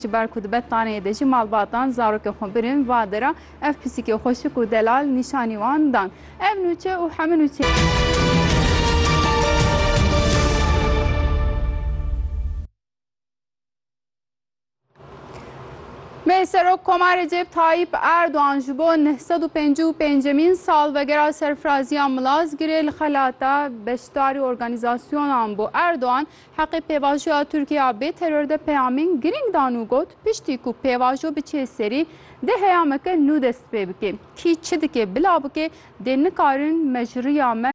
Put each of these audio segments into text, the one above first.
Ji ber ku dibe taneyê de jî malbatan zarokên xwe birin, va dera ev pisîkê xweşik û delal nîşanî wan dan. Ev nûçe û heme nûçeyên. Meh Serok Koma Recep Tayyip Erdogan ji bo neh sed û pêncî û pêncemîn salvegera serfiraziya Milazgirê li xelata beşdarî organîzasyonan bû. Erdogan Heqê pêvajoya Tirkiya bê teror de peyamên girîng dan û got, Piştî ku pêvajo biçe serî, dê heyameke nû dest pê bike. Kî çi dike bila bike, dê nikarin me ji riya me.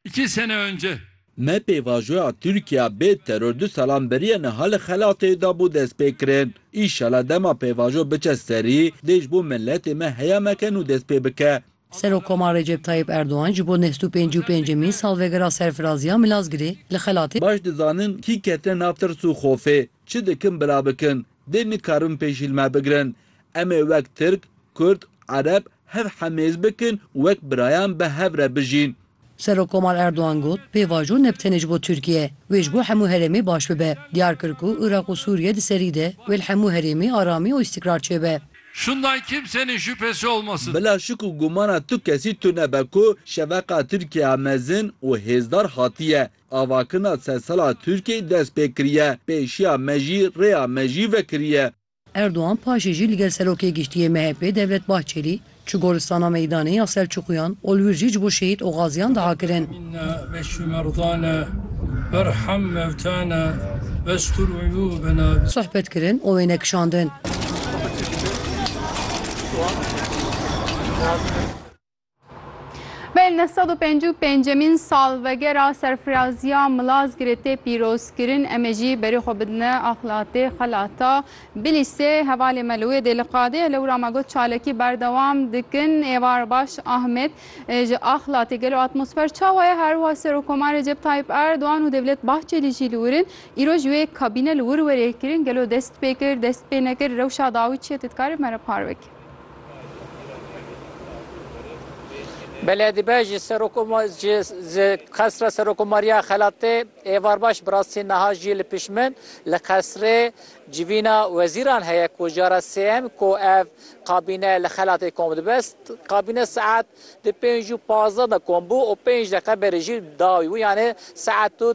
İki sene önce. Me pêvajoya Tirkiya bê teror du salan beriye niha li xelatê da bû destpêkirin. Înşela dema pêvajo biçe serî, dê ji bo miletê me heyameke nû dest pê bike. Serokkoma Recep Tayyip Erdogan ji bo nehst û pêncî û pêncemîn salvegera serfiraziya Milazgirê li xelatê. Baş dizanin kî ketine nav tirs û xofê, çi dikin bila bikin, dê nikarin pêşîlme bigirin. Em ê wek Tirk, Kurd, Ereb hev hemêz bikin û wek birayan bi hev re bijîn. Serokkomar Erdogan got, Pêvajo ne bi tenê ji bo Tirkiye, wê ji bo hemû herêmê baş bibe. Diyar kir ku Iraq û Sûriye di serî de wê li hemû herêmê aramî û îstîkrar çêbe. Şundan kimsenin şüphesi olmasın. Bila şik û gumana tu kesî tunebe ku şeveqa Tirkiyeya mezin û hêzdar hatiye. Avakirina sedsala Tirkiyeyê dest pê kiriye. Pêşiya me jî rêya me jî vekiriye. Erdogan paşê jî li gel Serokê Giştî yê MHP'ê Devlet Bahçelî çû Golistana Meydanê ya Selçuqiyan ol wir jî ji bo şehîd û gaziyan diha kirin. Sohbet kirin û wêne kişandin. Belê neh sed û pêncî û pêncemîn salvegera serfiraziya Milazgirê tê pîrozkirin. Em ê jî berê xwe bidine axlatê xelata Bilîsê. Hevalê me li wê dê li qadê ye. Lewra me got çalakî berdewam dikin. Êvar baş Ahmet ji axlatê gelo atmosfer çawa ye? Her wiha Serokkomar Recep Tayyîp Erdogan û Devlet Bahçelî jî li wir in. Îro ji wê kabîne li wir werê kirin. Gelo dest pê kir, dest pê nekir? Rewşa dawî çi ye? Tu dikarî me re par bik. Beledî be ji qesra Serokomariya Xelatê êvarbaş bi rastî niha jî li pişt min li qesrê civîna wezîran heye ku jara sêyem ku ev kabîne li Xelatê kom dibe. Kabîne saet di pênc û pazdeh de kom bû û pênc deqe berê jî dawî bû yanê saet û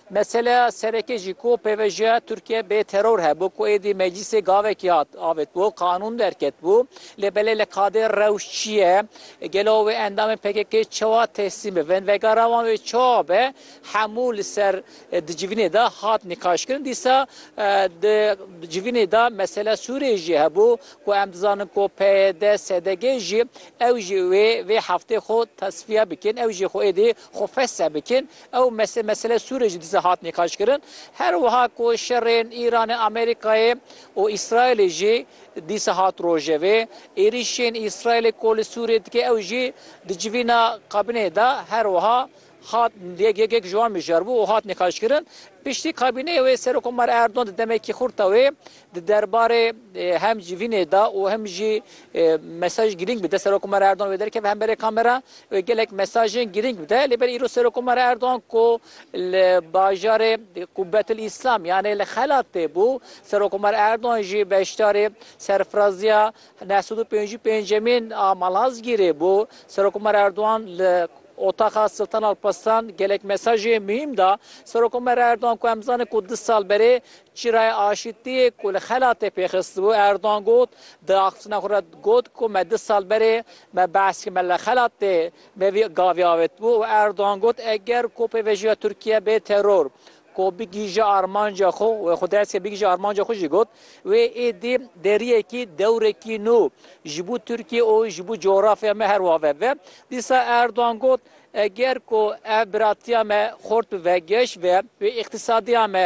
Meseleya sereke jî ku pêvejiya Tirkiye bê teror hebû ku êdî meclîsê gavekî hat avêtbû, qanûn derketbû. Lê belê li kadê rewş çi ye? Gelo wê endamên PKK'ê çawa teslîm bibin? Vegera wan wê çawa be? Hemû li ser di civînê de hat nîqaşkirin. Dîsa di civînê de meseleya Sûriyê jî hebû ku em dizanin ku PYD, SDG jî ew jî wê vê heftê xwe tesfiye bikin, ew jî xwe êdî xwe fesih bikin. Ew mesele meseleya Sûriyê jî dîsa hat nîqaşkirin. Her wiha ku şerên Îranê, Amerîkayê û Îsraîlê jî dîsa hat rojevê. Êrîşên Îsraîlê ku li Sûriyê dike ew jî di civîna kabîneyê de her wiha hat yek yek yek ji wan mijaribû û hat nîqaşkirin. Piştî kabîneyê wê Serokkomar Erdogan di demekî xurt de wê Di derbarê hem civînê de û hem jî mesaj girîng bi de Serokomar Erdogan wê derkeve hemberê kamera û gelek mesajên girîng bi de. Lê belê îro Serokomar Erdogan ku li bajarê Qubbetil Îslam yanê li xelat tê bû. Serokomar Erdogan jî beşdarê serfiraziya neh sed û pêncî û pêncemîn a Malazgîrê bû. Serokomar Erdogan li Otaxa Siltan Alparslan gelek mesajê muhîm da. Serokomar Erdogan ku em dizanin ku du sal berê Çîrayê aşîtiyê ku li xelatê pê xistibû Erdogan got, Di axiftina xwe re got ku me du sal berê me behs kir me li xelatê me vî gavê avêtibû û Erdogan got, Eger ku pêvajoya Tirkiye bê teror ku bigihîje armanca xwe wê xwe dest kir bigihîje armanca xwe jî got, wê êdî deriyekî dewrekî nû ji bo Tirkiye û ji bo cografya me her wiha veve. Dîsa Erdogan got, Eger ku ev biratiya me xurt bi vegeş ve wê îqtîsadiya me,